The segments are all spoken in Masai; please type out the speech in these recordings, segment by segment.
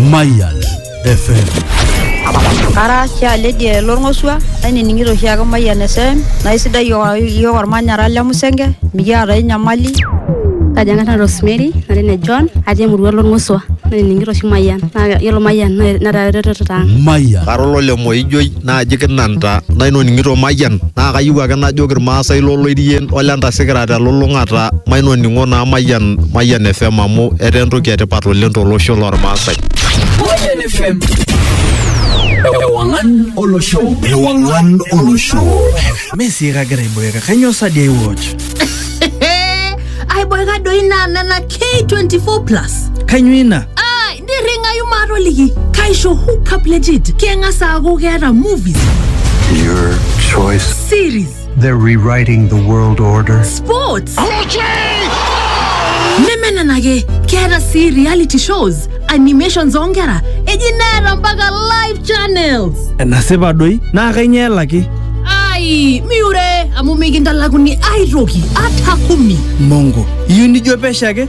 Mayan FM. Ara sialedi lorng'osua ainining'ito oshiake Mayian FM naa isidai iyiook ormanyara le Musenge mikiata ai nyamali. Kaji ang'ata Rosemary natii ne John atii emurua lorng'osua nainining'ito oshi Mayian naa yiolo Mayian netaa eretoto ang'. Mayan. Kara olole Moijoi naaji kinanta nainoning'ito mayian naa kayieu ake najoki irmaasai loloirien ole ntasikira telulung'ata mainoning'o naa mayian mayian fm amu etaa entoki etipat oleng tolosho lormaasai Mayian FM. Ewangan olosho. Ewangan olosho. Messi kagira aiboeka kanyoo sadi ai watch aiboeka doi naa nena k24 plus kanyoo ina nirring'ayu maatoliki kaisho hookup legit keng'as aaku keeta movies Your choice. series They're rewriting the world order. sports neme nena ake keeta sii reality shows animations oonkera eji neeta mpaka live channels enasipa doi naa kainyoo elaki ai miure amu mikintalakuni aitoki ata kumi mongo iyieu nijo pesho ake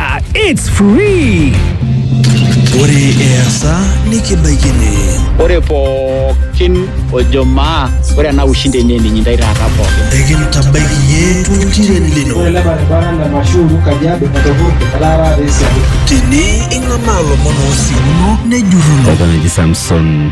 Ah, it's free! Ore easa nikibaikini. Ore pookin ojo maa ore ena ushindi enye ninyi ndai taata pookin. Ekintabaiki iyie toltiren lino. Ore ele baribara le Mashuru Kajiado etopurte etaa taata esiabu. Tene ing'amaa lomon oosiuno nejurruno. Eton eji Samson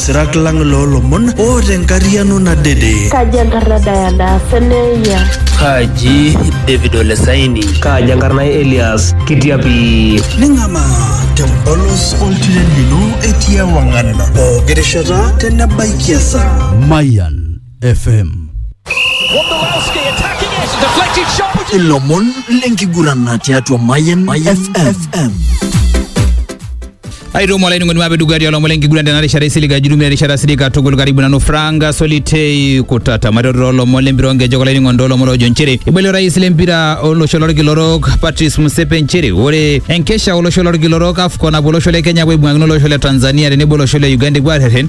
Sirak lang loolomon oota enkarriano nadede. Kaji enkarna Diana Seneia? Kaji David Olesaini? Kaji enkarna Elias Kitiapi? Ning'amaa tempolos oltiren lino etii ewang'an pooki rishata tenebaikia esaa. Mayan FM. Wondolowski attacking it. Deflected shot. Ilomon lenkigurana tiatua Mayan FM. aitomo olainining'oni mape dukuya tialo omole enkiguran tena rishata isilig ajirumia erishata silig katukul karibu nanu franka solitei kutata maitoto olomon lempira onkejek olainining'oni toolomon oojo nchere ibali orais lempira olosho lorkila orok patrice musepe nchere ore enkesha olosho lorkila orok afcon apuo olosho le kenya apuo aibung'akino olosho le tanzania tenebo olosho le uganda epuo arrerren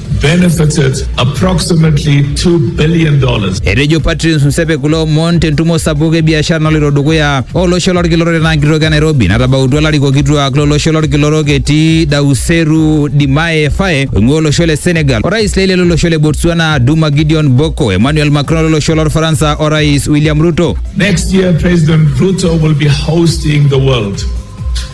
benefited approximately $2 billion. Etejo Patrice Msepe kulo omon tentumo sapuk e biashara naloito dukuya olosho lolkila orok tenaa nkitoki e Nairobi natabautua larikok kituak lolosho lolkila orok etii Dauseru Dimae Faye oing'ua olosho le Senegal, orais leile lolosho le Botswana Duma Gideon Boko, Emmanuel Macron lolosho lolfaransa o Rais William Ruto. Next year, President Ruto will be hosting the world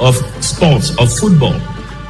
of sports, of football,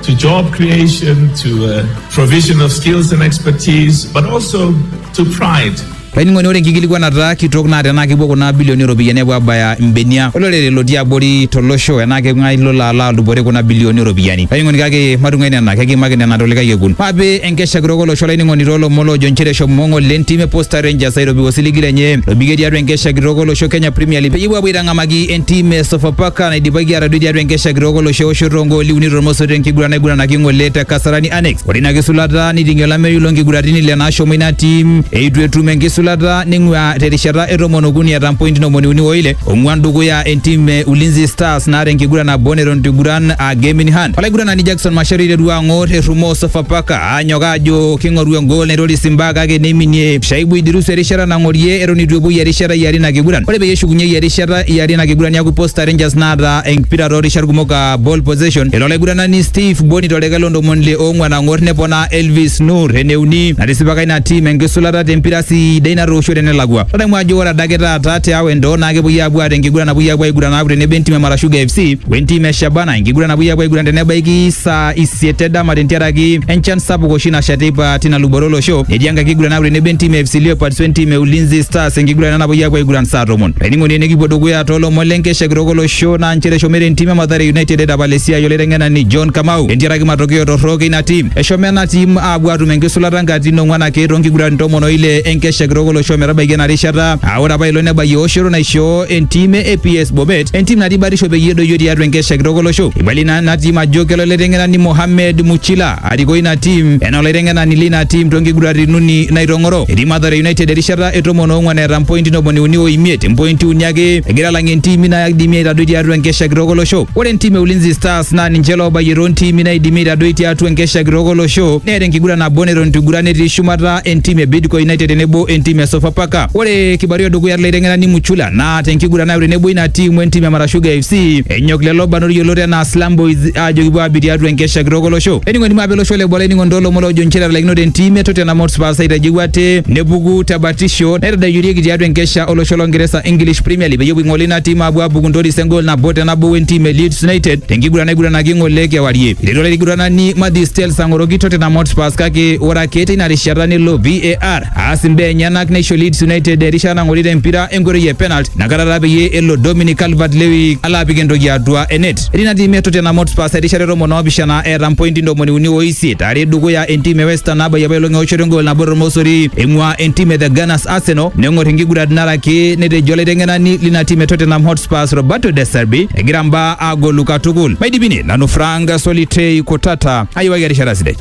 to job creation, to uh, provision of skills and expertise, but also to pride. laining'oni ore enkikilikuanata kitok naa tenaa kepuo kuna bilioni ooropiyiani apuo abaya imbenia olorere lotii abori tolosho enaa keng'ae lolo alo adupore kuna bilioni ooropiyiani laining'oni kake matung'ai nena kekiimaki nena tolikae kekun maape enkesha kitok olosho laining'oni toolomon loojo inchere eshomo ng'ong'o le ntim e posta rangers airopie osiligi lenye lobikie tiatua enkesha kitok olosho kenya premier league peyie epuo apuo aitang'amaki entim e Sofapaka naidipaki atadoi tiatua enkesha kitok olosho eoshoto ogooli uni tormosoto enkiguran naiguranaki ng'ole te Kasarani Annex. Ore ina kisulata niting'ie olameyu lonkiguratini le nashomo ina tim eitu etum enkisulata ning'ua terishata e tomon okuni eeta mpointi ntomoni uni oile ong'uan dukuya entim e Ulinzi Stars naata enkiguran nabo neton eiguran aa Game in Hand. Olaiguranani Jackson Macharia eiterua ang'or errumoo Sofapaka Anyok aajo king'oru engool naitoris imbaa kake neiminie Shaibu Idirusu erishata nang'orie eton eitu epuoi erishata e are ina kiguran. Ore peyie eshukunyei erishata e are ina kiguran niaku Posta Rangers naata empira too rishat kumok aa ball possession. Elo olaiguranani Steve Bony to deket loo ntomoni ile oong'uan ang'or neponaa Elvis Nur ene uni. Natisipaka ina tim enkisulata te mpira sidai natoosho te nelakua. Tadamu ajo ore adake taata te Awendo naa kepuoi aapuo aata enkiguran napuoi aapuo aiguran aaku tenebo entim e Marashuga FC we ntim e Shabana enkiguran napuoi aapuo aiguran te nebaiki saa isiet edama tentiaraki enchan sapuk oshi nasha teipa tina luboto olosho netii enkae kiguran naaku tenebo entim e FC Leopards wentim e Ulinzi Stars enkiguran ena napuoi apuo aiguran saa tomon laining'oni enikipuo dukuya toolomon lenkesha kitok olosho naa nchere eshomoita entim e Mathare United aitapal esiai olaiteng'enani John Kamau tentiaraki matokeo torrok eina tim eshomo ena tim aapuo aatum enkisulata nkatitin ong'wan ake toonkiguran tomon oile enkesha kitok olosho metabaiki ena rishata aa ore apa ilo nebayie eoshoto naishoo entim e APS Bomet entim natii batisho peyie edoyio tiatua enkesha kitok olosho ibali na, natii majokelo olaiteng'enani Mohamed Muchila arikoo ina tim enaa olaiteng'enani lina tim tonkiguratin uni naitong'oro etii Mathare United erishata e tomon oong'wan eeta mpointi ntomoni uni o imiet mpointi uni ake egira alang'ie intimi naidimi aitadoi tiatua enkesha kitok olosho ore entim e Ulinzi Stars naa ninche loobayie toontiimi naidimi aitadoi tiatua enkesha kitok olosho neeta enkiguran nabo neton itu iguran etii shumata entim e Bidco United tenebo entim e Sofapaka ore kibarua edukuya tolaiteng'enani Muchula naa tenkiguran nayo tenebo ina tim wentim e Marashuga FC Enyok lelo barnot yiolot enaa Slum Boys aajo kipuo aabik tiatua enkesha kitok olosho. Ening'oni maape losho le boo olainining'oni toolomon oojo nchere etalaikinote entim e Tottenham Hotspur aitadeu ate nepuku te batisho naitadoyiorieki tiatua enkesha olosho lo Ngeresa English Premier League peyie epuo aing'ole ina tim aapuo aabuku ntoris engol nabo te nabo wentim e Leeds United tenkiguran naiguranaki ng'ole kewarie. Eiteru olaiguranani Matthew Stels ang'oroki Tottenham Hotspur kake ore ake teina rishata nelo VAR aas imbaa enyenak neisho Leeds United erishata nang'orita empira enkoitoi e penalty nakata taa peyie elo Dominic Calvert-Lewin alo apik entoki atua enet. Etii ina tiim e Tottenham Hotspur erishata e tomon oopishana eeta mpointi ntomoni uni o isiet are dukuya entiim e West Ham nabayie apa elong eoshoto engool nabo tormosori eing'ua entiim e The Gunners Arsenal neng'or inkiguran naraki netejo olaiteng'enani lina tiim e Tottenham Hotspur Roberto De Zerbi egira mbaa agolu katukul. Maidipini nanu Frank Solitei Kutata ayiwaki erishata sidai.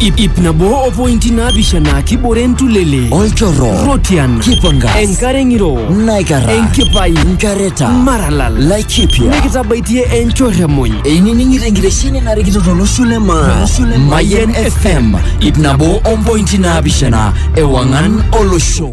ip ip nabo o pointi naapishana kibore entulele olchorro rotian kipangas enkare ng'iro naikara enkipai nkareta maralal laikipia nikitabaitie enchorremony einining'ito enkitesheni narikito tolosho le maa mayen fm ip nabo ompointi naapishana ewang'an olosho